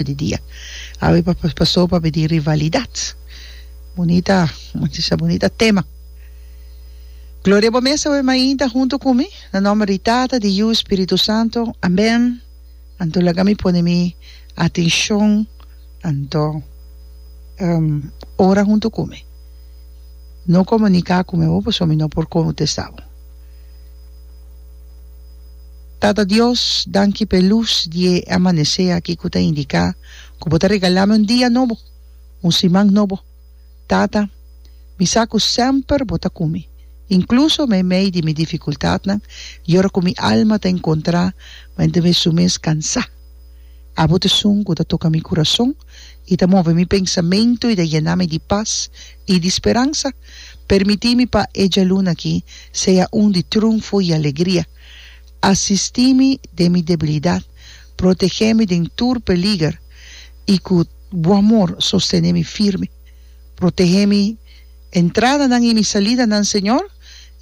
hora di dia awe pa paso pa bini rivalidad bunita machista bunita tema Gloria bo mes awe mainta hunto cu mi na nomber di Tata di Yu Spiritu Santo amen anto laga mi pone mi atencion anto um ora hunto cu mi no comunica cu mi awe pasobra mi no por contesta bo. Tata Dios, danki p'e lus di e amanesé aki ku ta indiká ku Bo ta regalami un dia nobo, un siman nobo. Tata, mi sa ku semper Bo ta ku mi, inkluso meimei di mi difikultatnan i ora ku mi alma ta enkontrá mente mes su mes kansá. Abo t'e sun ku ta toka mi kurason i ta move mi pensamentu i ta yena mi di pas i di speransa. Permití mi pa e djaluna aki sea un di trunfo i alegria. Asistí mi den mi debilidat, protegé mi den tur peliger, i ku Bo amor sostené mi firme. Protegé mi entradanan i mi salidanan, Señor,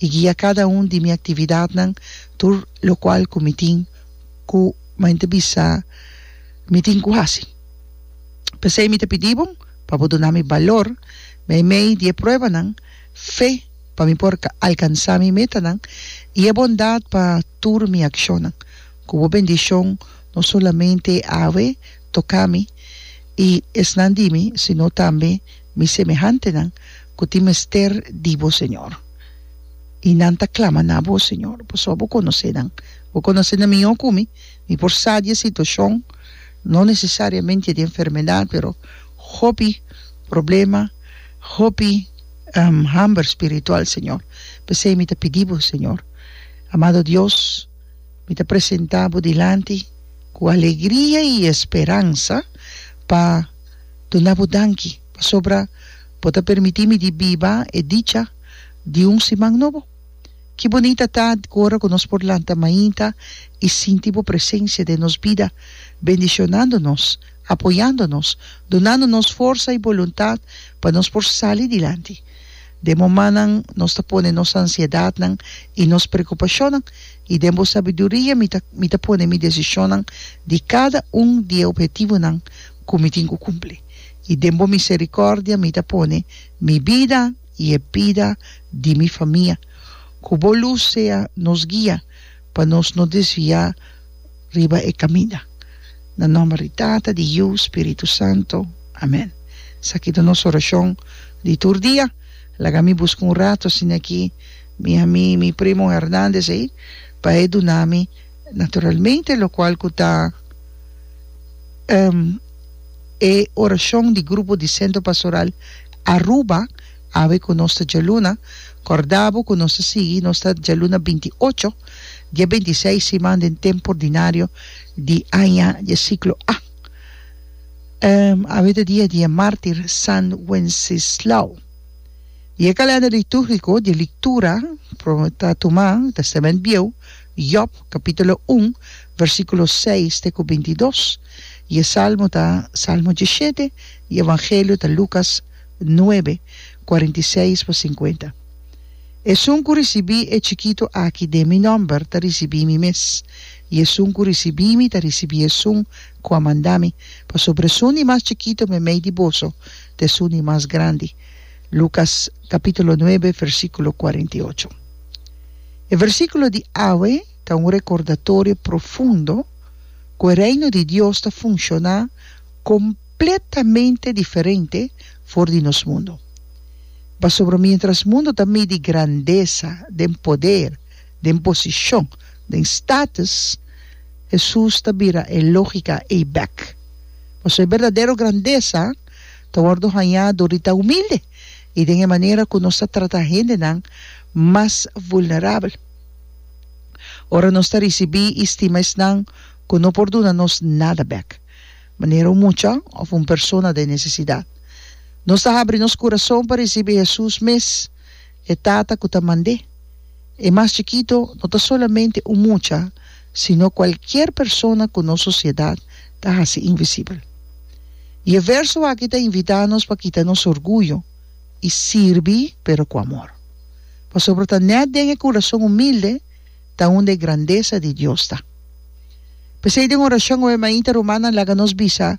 i guia kada un di mi aktividatnan tur lokual ku mi tin ku mente bisa mi tin ku hasi. P'esei mi ta pidí Bo pa Bo duna mi balor meimei di e pruebanan, Fe pa mi por alkansá mi metanan i e bondat pa tur mi akshonnan. Ku bo bendishon no solamente a hawe toká mi i esnan di mi, sino tambe mi semehantenan ku tin mester di bo, Señor. I nan ta klama na bo, Señor, pasobra bo konosé nan. Bo konosé nan mihó ku mi. Mi por sa di e situashon, no nesesariamente di enfermedat, pero hopi problema. hopi hamber spiritual Señor, pesey mi ta pidi Bo Señor, amado Dios, mi ta presenta Bo dilanti cu alegria y esperansa pa duna Bo danki pasobra Bo ta permiti mi di biba e dicha di un siman nobo. Ki bonita ta cu ora cu nos por lanta mainta y sinti Bo presencia den nos bida bendicionando nos. apoyando nos, dunando nos forsa i boluntat pa nos por sali dilanti. Den momannan nos ta pone nos ansiedatnan i nos preokupashonnan, i den bo sabiduria mi ta mi ta pone mi desishonnan di kada un di e ophetivonan ku mi tin ku kumpli, i den bo miserikòrdia mi ta pone mi bida i e bida di mi famia. Ku bo lus sea nos guia pa nos no desviá riba e kaminda. Na nòmber di Tata, di Yu, Spiritu Santu. Amèn. Esaki ta nos orashon di tur dia. Laga mi buska un ratu asin'akí mi ami mi primo Hernandez ei pa e duna mi naturalmente lokual ku ta e orashon di grupo di Sentro Pastoral Aruba. Awe ku nos ta djaluna, kòrda bo ku nos ta sigui nos ta djaluna binti ocho di e binti seis siman den tempu ordinario di aña di e siklo A. Awe ta dia di e mártir San Wensislao. Di e kalènder litúrgiko di e lektura por bo ta tuma Tèstamènt Bieu, Yòb, kapítulo un, vèrsikulo seis te ku binti dos, i e salmo ta salmo dishete, i e evangelio ta Lukas, 9, kuarenta i seis pa sinkuenta. Esun ku risibí e chikitu aki den mi nòmber ta risibí mi mes, i esun ku risibí mi ta risibí esun ku a manda mi, pasobra esun di mas chikitu meimei di boso ta esun di mas grandi. Lukas kapítulo nuebe, versíkulo kuarenta i ocho. E versíkulo di awe ta un rekordatorio profundo ku e Reino di Dios ta funshoná kom. completamente diferente for di nos mundo. Pasobra mientras mundo ta midi grandesa den poder, den posicion, den status, Hesus ta bira e logica ei bek. Pasobra e berdadero grandesa ta wordo haña dor di ta humilde i den e manera cu nos ta trata hendenan mas vulnerabel. Ora nos ta ricibi i stima esnan cu no por duna nos nada bek. Manera un mucha of un persona den nesesidat. Nos ta habri nos curason pa ricibi Hesus mes, e Tata cu ta mand'E. E mas chikito no ta solamente un mucha, sino cualkier persona cu nos sociedad ta haci invisibel. Y e verso aki ta invita nos pa kita nos orguyo y sirbi pero cu amor. Pasobra ta net den e curason humilde, ta unda e grandesa di Dios ta. P'esei den orashon oe mainta rumannan laga nos bisa